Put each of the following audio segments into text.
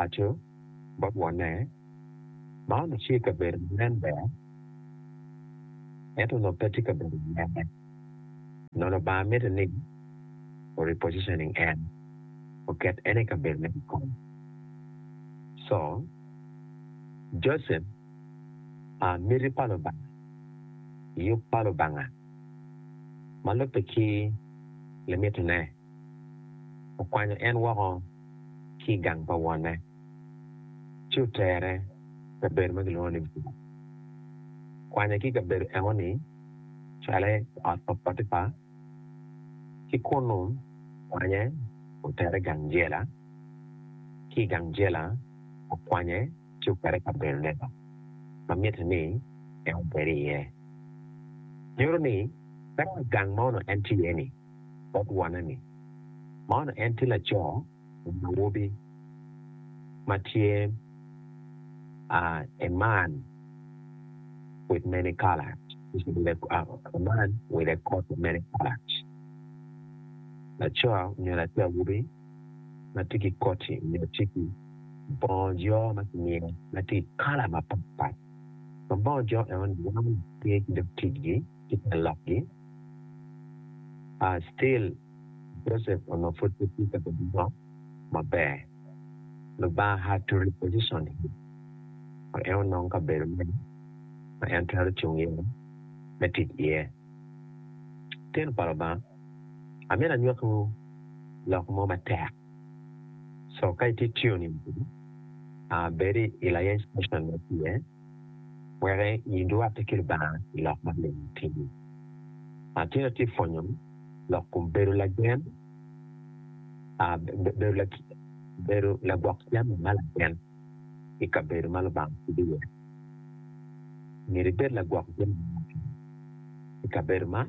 Aco, bot wonne, man ocir ka bedo ma nen ber, ento onongo pe tye ka bedo mere. Nono Lubanga mitte ni o-repositioning en, oket en i kabedone kikome. Co. Joseph, a miti pa Lubanga, yub pa Lubanga, ma lubbe ki limitine. okwanyo en woko ki i gang pa wonne, ci otere i kabedo ma kilwongo ni Geba. Okwanye ki i kabedo enoni cale ot pa Potipa, ki kunnu okwanye otere i gang jela, ki i gang jela okwanye ci okete i kabedo lega ma mitte ni en obed iye. Nyuto ni, ka dong gang ma onongo en tye iye-ni, bot wone ni, Man en tye laco nyo awobi ma tye a a man with many colors a man with a coat of many colors laco nyo latin awobi ma tye ki koti nyo tye ki bongo jo ma kimiyo ma tye i kala mapatpat ma bongo jo enoni romo ki ticgi ki te lokgi. aa still Joseph onongo pud pe tye ka bedo lok maber, Lubanga had to reposition him wek en onong kabedo mo ma en twero cung iye me tic iye. Litino pa Lubanga, amito anywakkiwu lok mo matek, so ka itye tuning kwedwa, aa bedi i layeny station ma itye iye, Wek inywatti ki Lubanga i lok ma myero itimi. Atye atye pwonyo lok kom bedo lagen, bedo lagwok jami ma lagen i kabedo ma Lubanga kwo iye. Myero ibed lagwok jami ma lagen i kabedo man.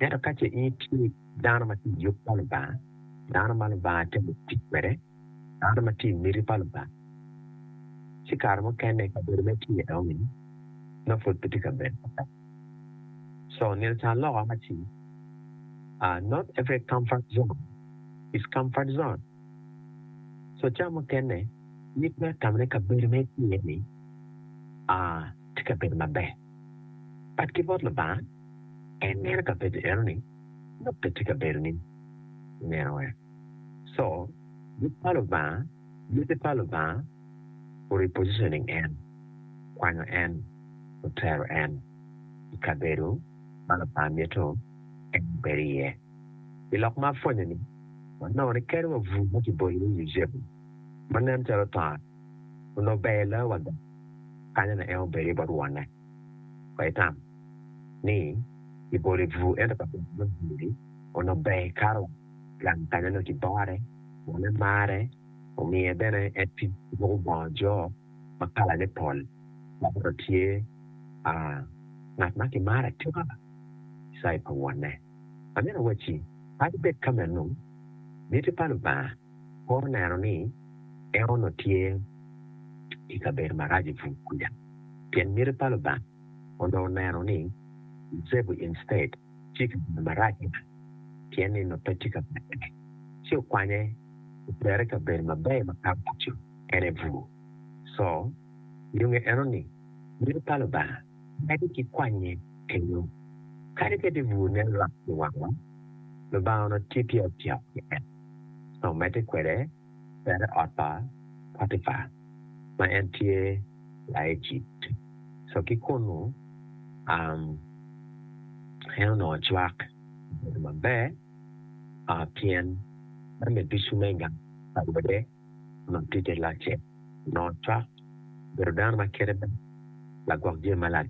Ento ka ce in itye dano ma tye i yub pa Lubanga, dano ma Lubanga temo tic kwede, dano ma tye i miti pa Lubanga, ci kare mukene i kabedo ma itye iye-ni nongo pud pe tye kabedo maber. Co, nino ca loko ma ci, Not every comfort zone is comfort zone. Co, ca mukene in itwero tamo ni kabedo ma itye iye-ni tye kabedo maber. Bad ki bot Lubanga, en mito ka penyo enoni, Lok pe tye ka bedo ni ineno ee? Co, yub pa Lubanga, yubbe pa Lubanga o repositioning en, kwanyo en, otero en i kabedo ma Lubanga mito en obed iye. I lok ma apwonyo ni, wanongo ni kadi wa bur ma kibolo iye Yucepu, ma nen calo otongo onongo ber loyo wada kanya onongo en obedo iye bot wonne. Wek itam ni ibolo i bur ento ka pwonye me bur-ri onongo ber ikato gang kanya onongo kibore, wonne marre, omiye bene en tic ki ruko bongo jo ma kalane pol dok onongo tye ngat ma kimaro atika i cai pa wonne. Amitti awacci kadi bed ka meno, miti pa Lubanga, Kor neno ni en onongo tye i kabedo marac i pur kwija pien miti pa Lubanga onongo neno ni Yucepu instead tye i kabedo marac meno pien ni onongo pe tye ka pekone. Ci okwanye otere i kabedo maber makato kico, en aye bur. Co nyonge eno ni miti pa Lubanga medde ki kwanye kenyo. Kadi bed ni bur nen lwak i wangwa, Lubanga onongo tye tye ka tyeko ki en. ma omedde kwede bene ot pa Potipa ma en tye Laejipt. So ki kunnu, en onongo cwak obedo maber pien en bene ducu me gang pa wode ma tye te locce. Onongo cwak obedo dano ma kite ber, lagwok jami malac.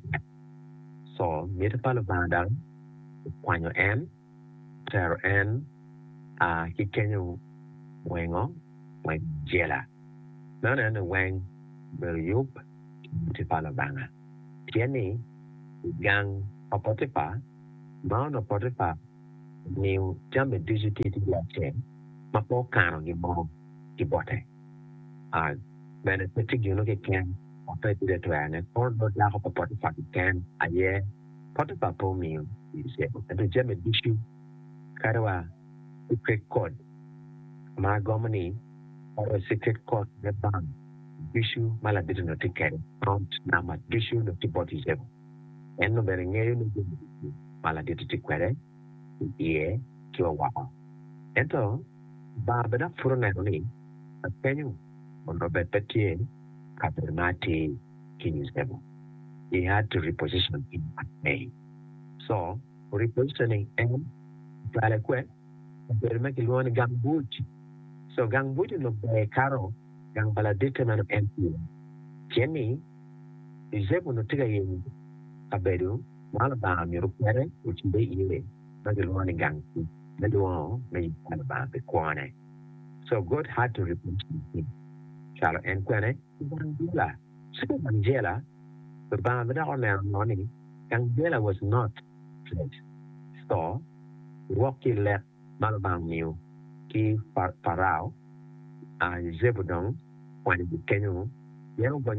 So, miti pa Lubanga dong okwanyo en. tero en a ki kenyo wengo ma jela, meno neno ni weng obedo yub ki boti pa Lubanga. Pien ni i gang pa Potipa, ma onongo Potipa omiyo jami ducu tye ki yo acel ma pe okano gimmo ki bote, a bene pe tye gin mukeken ma pe ibino twerone, kono dong dako pa Potipa keken aye. Potipa pe omiyo Yucepu ento jami ducu kadi wa ki pek kod ma agomo ni Pharaoh ci ket kot me bang ducu ma labedo onongo tye kede prompt number ducu onongo tye bot Yucepu en onongo bene ngeyo ni jami ducu ma laditi tye kwede ki iye ki wa woko ento Lubanga bene apud oneno ni lakenyo onongo bed pe tye kabedo ma atir. ki i cebo. He had to reposition in a way. So, repositioning en ocwale kwe? Obedo ma kilwongo ni gang buc. So, gang buc onongo ber kato gang pa laditte meno en pye? Pien ni Yucepu onongo tye ka yenyo kabedo ma Lubanga omito kwede ocibbe iye ma kilwongo ni gang buc me lwongo me yub pa Lubanga pi kwone. So, God had to reposition him. Cwalo en kwene? Gang jela, Cito gang jela, Lubanga me dok oneno ngo ni gang jela was not place co wok ki lek ma Lubanga omiyo ki Parao, Zebedong kwanyo gi kenyo pien ogonyo